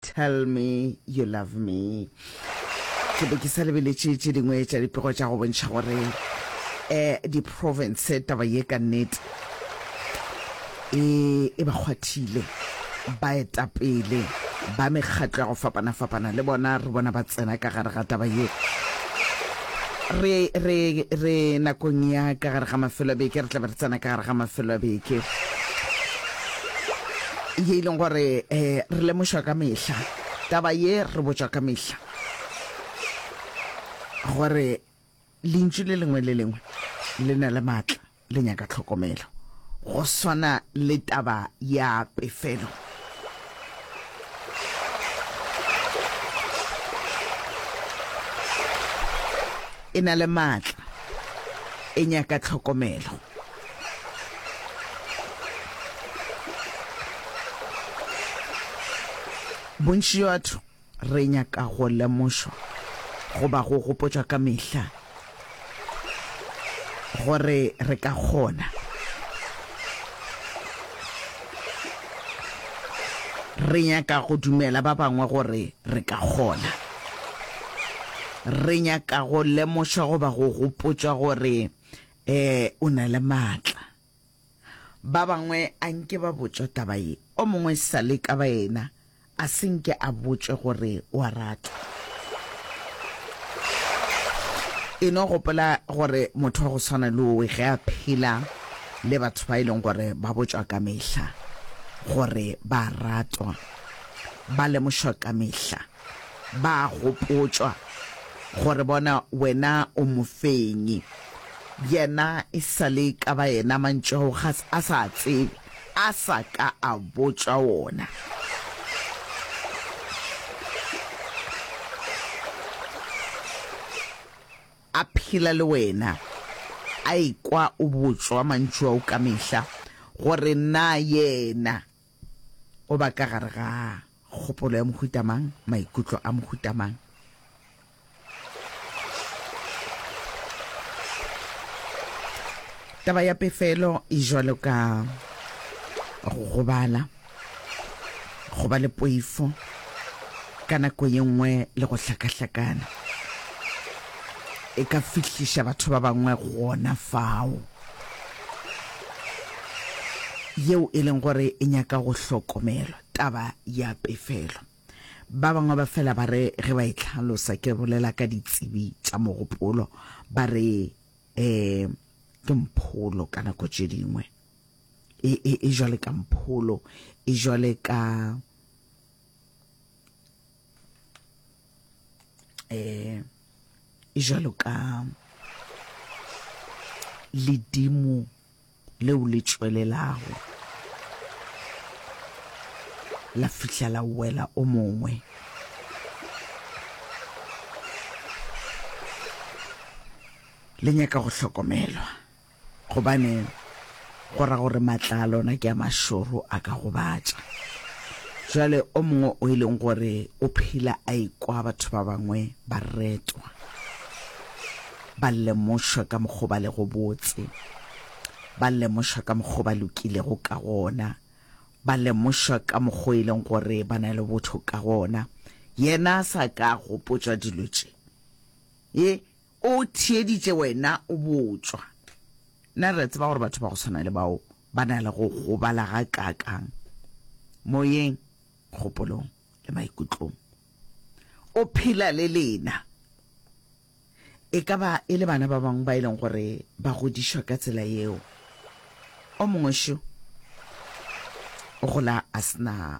Tell Me You Love Me. Ke be ke sa lebeletše tše dingwe tša dipego tša go bontšha gore um di-province taba ye ka nnete e e ba kgwathile baetapele ba mekgatlo ya go fapana-fapana le bona re bona ba tsena ka gare ga taba ye re re re nakong ya ka gare ga mafelo a beke re tla be re tsena ka gare ga mafelo a beke ye e leng gore um re lemošwa ka mehla taba ye re botšwa ka mehla gore lentšu le lengwe le lengwe le na le maatla le nyaka tlhokomelo go swana le taba ya pefelo e na le maatla e nyaka tlhokomelo Bontši bja batho re nyaka go lemošwa goba go gopotšwa ka mehla gore re ka kgona. Re nyaka go dumela ba bangwe gore re ka kgona. Re nyaka go lemošwa goba go gopotšwa gore Ee, o na le maatla. Ba bangwe a nke ba botšwa taba ye. O mongwe e sa le ka baena a se nke a botšwe gore o a ratwa. E no gopola gore motho wa go swana le owe ge a phela le batho ba e leng gore ba botšwa ka mehla gore ba ratwa, ba lemošwa ka mehla. Ba a gopotšwa gore bona wena o mofenyi. Yena e sa le ka ba yena mantšu ao ga a sa a tsebe, a sa ka a botšwa wona. A phela le wena, a ekwa o botšwa mantšu ao ka mehla gore na yena O ba ka gare ga kgopolo ya mohuta mang, maikutlo a mohuta mang. Taba ya pefelo e jwalo ka go gobala, go ba le poifo, ka nako ye nngwe le go hlakahlakana e ka fihliša batho ba bangwe gona fao. yeo e leng gore e nyaka go hlokomelwa, taba ya pefelo. Ba bangwe ba fela ba re ge ba e hlalosa, ke bolela ka ditsebi tša mogopolo, ba re um ke mpholo ka nako tše dingwe e, e, e jwale ka mpholo e jwale ka eh jalo ka ledimo leo le tšwelelago la fihla la wela o mongwe le nyaka go hlokomelwa Gobane go ra gore matla a lona ke a mašoro a ka gobatša. Bjale o mongwe o e leng gore o phela a ikwa batho ba bangwe ba retwa, ba lemošwa ka mokgwa o ba lego botse, ba lemošwa ka mokgwa o ba lokilego ka gona, ba lemošwa ka mokgwa o e leng gore ba na le botho ka gona, yena a sa ka gopotšwa dilo tše, ye O theeditše wena o botšwa. Nna re a tseba gore batho ba go swana le bao ba na le go gobala gakaakang, moyeng, kgopolong le maikutlong. O phela le lena. E ka ba e le bana ba bangwe ba e leng gore ba godišwa ka tsela yeo. O mongwe šo o gola a se na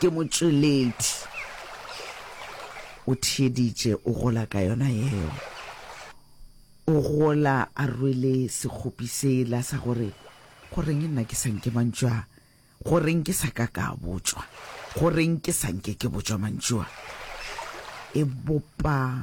Ke motšweledi. O theeditše, o gola ka yona yeo. O gola a rwele sekgopi sela sa gore, Goreng nna ke sa nke mantšu a? Goreng ke sa ka ka a botšwa? Goreng ke sa nke ke botšwa mantšu a? E bopa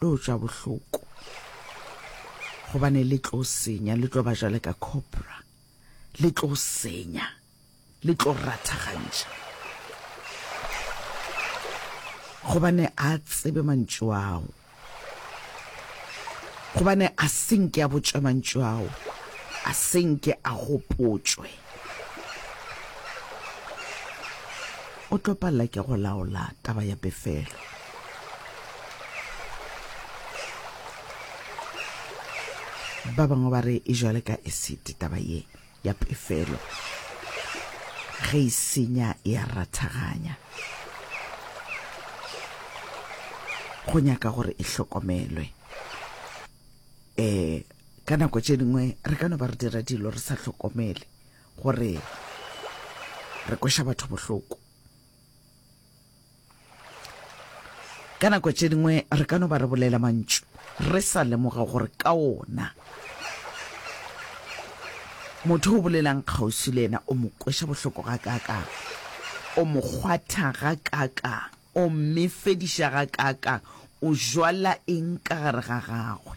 lo tšwa bohloko gobane le tlo senya le tlo ba jale ka cobra le tlo senya le tlo rathagantša gobane a tsebe mantšu ao gobane a senke a botšwa mantšu ao a senke a gopotšwe o tlo palela ke go laola taba ya pefelo ba bangwe ba re e jwale ka esite taba ye ya pefelo ge e senya e ya rathaganya go nyaka gore e hlokomelwe um Ka nako tše dingwe re ka no ba re dira dilo re sa hlokomele gore re kweša batho bohloko. Ka nako tše dingwe re ka no ba re bolela mantšu re sa lemoga gore ka ona motho o bolelang kgauswi le ena o mo kweša bohloko ga kaakang o mo kgwatha ga kaakang o mmefediša ga kaakang o jwala eng ka gare ga gagwe